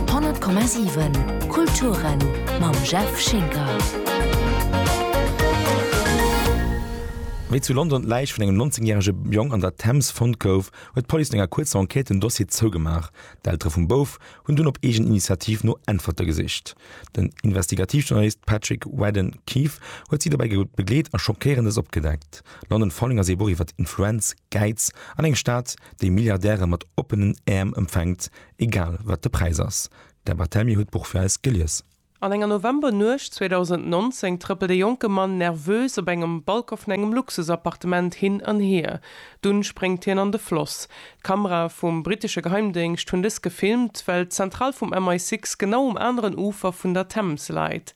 100,7 Kulturen mam Jeff Schinker. Wéi zu London d'Läich vun engem 19 järege Jong an der Thames fonnt gouf, huet d'Police no enger kuerzer Enquête den Dossier zougemaach. D'Eltere vum Bouf hunn dunn op eegen Initiativ no Äntwerte gesicht. Den Investigativjournalist Patrick Radden-Keefe huet si dobäi begleet a Schockéierendes opgedeckt. London Falling ass ee Buch iwwer Influenz, Gäiz an eng Stad, déi Milliardäre mat oppenen Äerm empfänkt, egal wat de Präis ass. D'Deb Artemi huet d'Buch fir eis gelies. An enger Novembernuecht 2019 trëppelt e jonke Mann nervös op engem Balcon vun engem Luxusappartement hin an hier. Dunn spréngt hien an de Floss. D'Kamerae vum brittesche Geheimdéngscht hunn dëst gefilmt, well d'Zentral vum MI6 genau um aneren Ufer vun der Thames läit.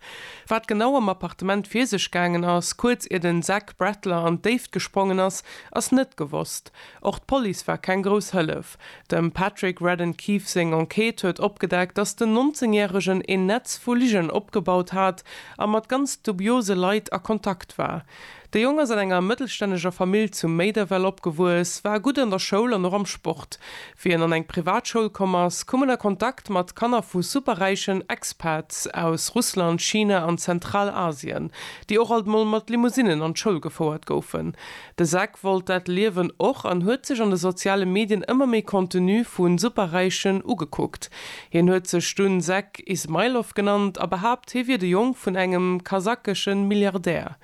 Wat genau am Appartement vir sech gaangen ass, kuerz ier de d'Brettler an d'Déift gesprongen ass, ass net gewosst. Och d'Police war keng grouss Hëllef. Dem Patrick Radden Keefe seng Enquête huet opgedeckt, datt den 19 Järegen een Netz vu Ligen opgebaut hat a mat ganz dubiose Leit a Kontakt war. De Jong ass an enger mëttelstänneger Famill zu Méiderwell opgewuess, war gutt an der Schoul an och am Sport. Wéi en an eng Privatschoul komm ass, koum en a Kontakt mat Kanner vu superräichen Expats aus Russland, China an Zentralasien, déi och alt mol mat Limousinen an d'Schoul gefouert goufen. De Zach wollt dat Liewen och an huet sech an de soziale Medien ëmmer méi Contenu vu Superräichen ugekuckt. Hien huet sech dunn Zach Ismailov genannt a behaapt, hie wier de Jong vun engem kasakeschen Milliardär.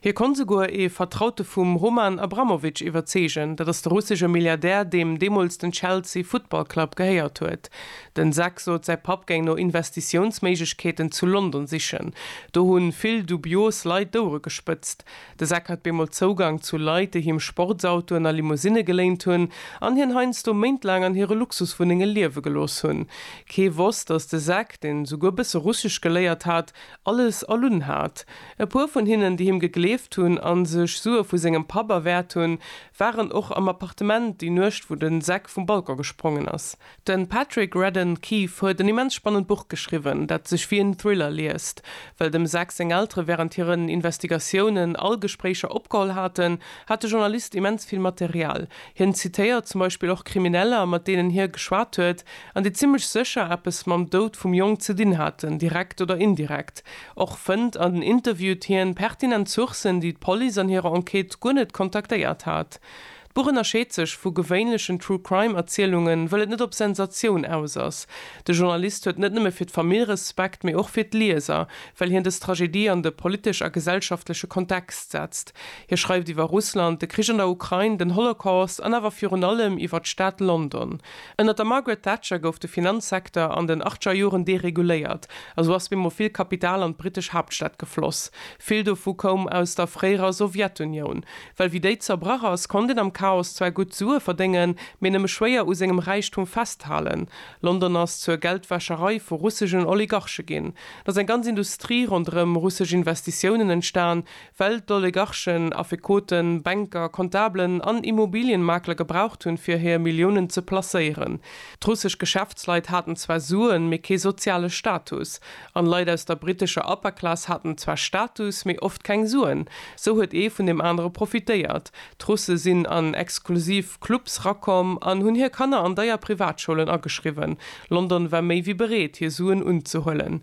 Hie konnt souguer ee Vertraute vum Roman Abramovich iwwerzeegen, dat ass de russesche Milliardär, deem deemools den Chelsea Football Club gehéiert huet. Den Zak sot, säi Papp géing no Investitiounsméiglechkeeten zu London sichen. Do hu vill dubios Leit d'Ouere gespëtzt. De Zak hat bemol Zougang zu Leit, déi him Sportsautoen a Limousinne geléint hunn an hien heiansdo méintlaang an hire Luxuswunnenge liewe gelooss hunn. Kee wosst, datt de Zak, deen souguer e bësse Russesch geléiert hat, Alles erlunn hat. E puer vun hinnen, déi him gegleeft hunn a sech Sue vu sengem Papp erwäert hunn, waren och am Appartement déi Nuecht, wou de Zack vum Balcon gesprongen ass. De Patrick Radden Keefe huet en immens spannend Buch geschriwwen, dat sech wéi en Thriller liest. Well dem Zack seng Eltere wärend hiren Investigatiounen all Gespréicher opgeholl haten, hat de Journalist immens vill Material. Hien zitéiert zum Beispill och Krimineller, mat deenen hie geschwat huet, an déi zimmlech sécher eppes mam Doud vum Jong ze dinn haten, direkt oder indirekt. Och fënnt an den Interviewt hien pertinent Sourcen, déi d'Police an hirer Enquête guer net kontaktéiert hat. D'Buch ënnerscheet sech vu gewéinlechen True-Crime-Erzielungen, wëll et net op Sensatioun aus ass. De Journalist huet net nëmme fir d'Famill Respekt, mee och fir d'Lieser, well hien dës Tragedie an de politesch a gesellschaftleche Kontext setzt. Hie schreift iwwer Russland, de Krich an der Ukrain, den Holocaust an awer virun allem iwwer d'Stad London. Ënnert der Margaret Thatcher gouf de Finanzsecteur an den achtscher Joren dereguléiert a sou ass bemol vill Kapital an d'britesch Haaptstad gefloss. Vill dovu koum aus der fréierer Sowjetunioun. Well wéi déi zerbrach ass, konnt een am Chaos zwar gutt Sue verdéngen, mee nëmme schwéier u sengem Räichtum festhalen. London ass zur Geldwäscherei vu russegen Oligarche ginn. Et ass eng ganz Industrie ronderëm russesch Investitiounen entstan, Well d'Oligarchen, Affekoten, Bänker, Comptablen an Immobilienmakler gebraucht hunn, fir hir Milliounen ze placéieren. D'russesch Geschäftsleit haten zwar Suen, mee kee soziale Status. An Leit aus der brittescher Upper Class haten zwar Status, mee oft keng Suen. Sou huet ee vun deem anere profitéiert. D'Russe sinn an exklusiv Clubs rakomm an hunn hir Kanner an deier Privatschoulen ageschriwwen. London war méi wéi bereet, hir Suen unzehuelen.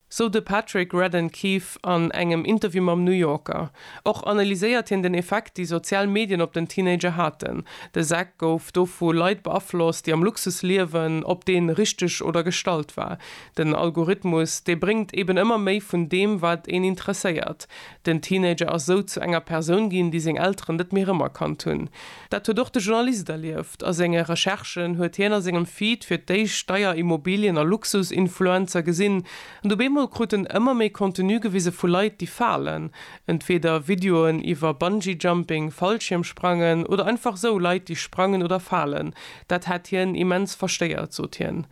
sou de Patrick Radden Keefe an engem Interview mam New Yorker. Och analyséiert hien den Effekt, déi sozial Medien op den Teenager haten. De Zach gouf do vu Leit beaflosst, déi am Luxus liewen, ob dee richteg oder gestallt war. Den Algorithmus, dee bréngt eben ëmmer méi vun deem, wat een interesséiert. Den Teenager ass sou zu enger Persoun ginn, déi seng Elteren net méi rëmerkannt hunn. Dat huet och de Journalist erlieft. A senge Recherchen huet hien a sengem Feed fir d'éischt Steier-, Immobilien a Luxus-Influencer gesinn. An op eemol krut en ëmmer méi Contenu gewise vu Leit, déi falen. Entweeder Videoen iwwer Bungee-Jumping, Fallschiermsprangen oder einfach sou Leit, déi sprangen oder falen. Dat hätt hien immens verstéiert, sot hien.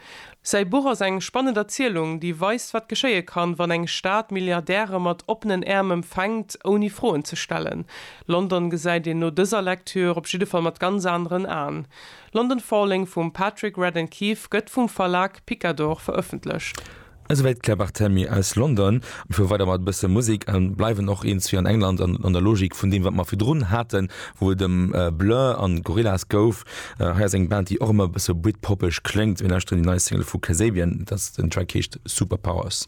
Säi Buch ass eng spannend Erzielung, déi weist, wat geschéie kann, wann eng Stad Milliardäre mat oppenen Äerm empfänkt, ouni Froen ze stellen. London gesäit een no dëser Lektür op jidde Fall mat ganz aneren Aen. London Falling vum Patrick Radden Keefe gëtt vum Verlag Picador verëffentlecht. Esouwäit d'Claire Barthelmy aus London. Mir fuere weider mat e bësse Musek a bleiwen och eens wéi an England an der Logik vun deem, wat mer virdrun haten, wou et ëm Blur an Gorillaz gouf. Hei ass eng Band déi och emmer e bësse britpoppeg kléngt. Mir lauschteren déi nei Single vu Kasabian, dat den Track heescht Superpowers.